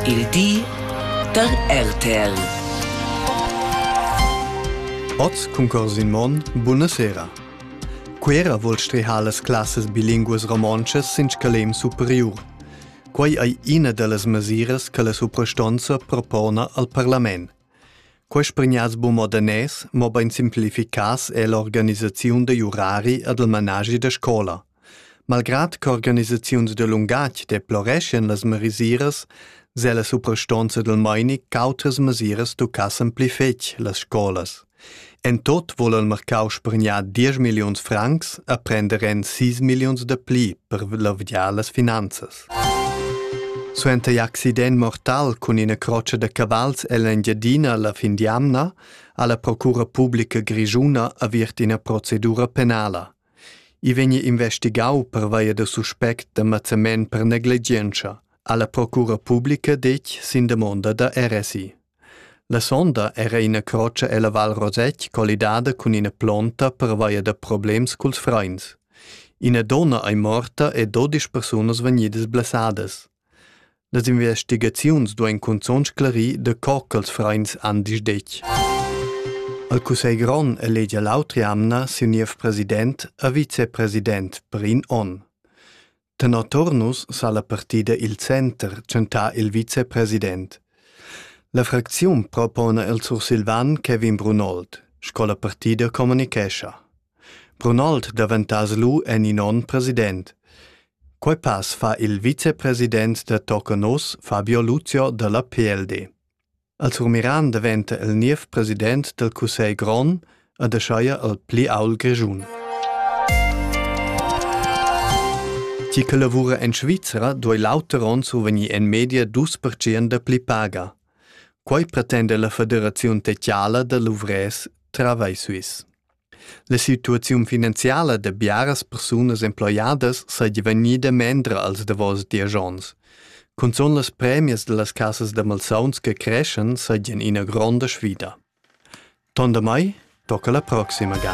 Il di da RTL. Oz concurs in mon, buna sera. Quera vol strehar las classas bilinguas romontschas sin scalem superiur. Quai ei ina dallas mesiras che la suprastonza propona al parlament. Quai spregnaz bu mo danès, mobein simplificas è l'organisaziun da jurari ed il managi da scola. Malgrad ch'organisaziuns da lungatg deploreschan las mesiras, s'ha la suprastonza dal meini ch'autras mesiras tuccassen pli fetg las scolas. En tot vol il marcau spregnar 10 milliuns francs a prender en 6 milliuns da pli per lavgiar las finanzas. Suenter in accident mortal cun ina croccia da cavals ell'Engiadina la fin di amna ha la Procura Publica Grischuna avviert ina procedura penala. I vegni investigau pervia da suspect da mazzament per negligientscha, ha la procura publica detg sin damonda da RSI. La sonda era ina croce ella Val Rosett collidada cun ina plonta pervia da problems culs freins. Ina donna ei morta e dodisch persunas vegnidas blessadas. Las investigaziuns duein cunzun sclarir da co ch'ils freins han disdetg. Il cussegl grond elegia l'autra jamna siu niev president e vicepresident per in onn. Tenor Turnus sa la partida il center tschentar il vicepresident. La fracziun propona il sursilvan Kevin Brunold, sco la partida communicescha. Brunoldt daventass lu en in onn president. Quei pass fa il vicepresident da Tocanos, Fabio Lucio dalla PLD. Al Surmiran daventa el niev president dal Cussegl grond ed aschaia al pli aul grischun. Chi che lavura en Svizra duei l'auter onn survegnir en media dus percent da pli paga. Quei pretenda la Federaziun Techiala da Luvrés Travai Suisse. La situaziun finanziala da biaras persunas emploiadas seigi vegnida mendra als davos diesch onns. Cunzun las premias dallas casas da malsauns che creschan seigien ina gronda sfida. Tonda mai, tocca la proxima ga.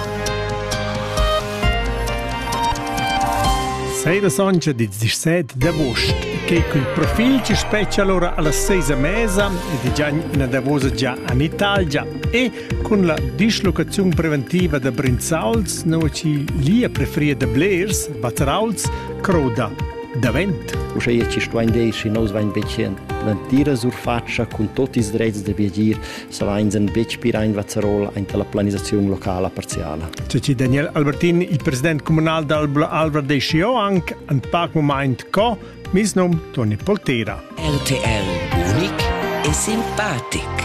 Seira soncha dits 17 d'agost, che cun profil ci speccia allora alla seisa mesa e di già una davosa già in Italia e Cun la dislocaziun preventiva da Brinzauls, nua chi lia prefria da blers, Batrauls, crouda davent. Uschea chi stuain dir schi nous vain becen l'entira surfatscha cun tot ils drets da viagir, savains en betg pira in Vazerol aint la planisaziun locala parziala. Ceci Daniel Albertin, il president comunal d'Albla Alvra dei Sioanc, an pac moment co, mis num Toni Poltera. RTL, unic e simpatic.